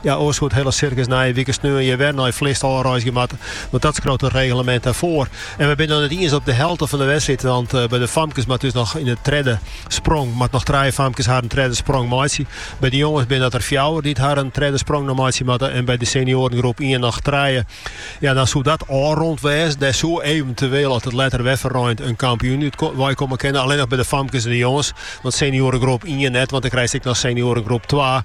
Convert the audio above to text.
Ja, oars hie it hiele sirkus nije wike sneon hjir wer nei Flist ôfreizgje moatte, want dat skriuwt it reglemint ek foar. En we binne noch net iens op de helte fan de wedstriid, want by de famkes moat dus noch yn de tredde sprong moatte noch trije famkes harren tredde sprong meitsje. By de jonges binne dat der fjouwer dy't harren tredde sprong noch meitsje moatte en by de senioarengroep ien noch trije. Ja, dan soe dat ôfrûnd wêze. Der soe eventueel, as it letter wer ferreint, in kampioen út weikommen kinne. Allinnich by de famkes en de jonges, want senioarengroep ien net, want dan krijst ek noch senioarengroep twa.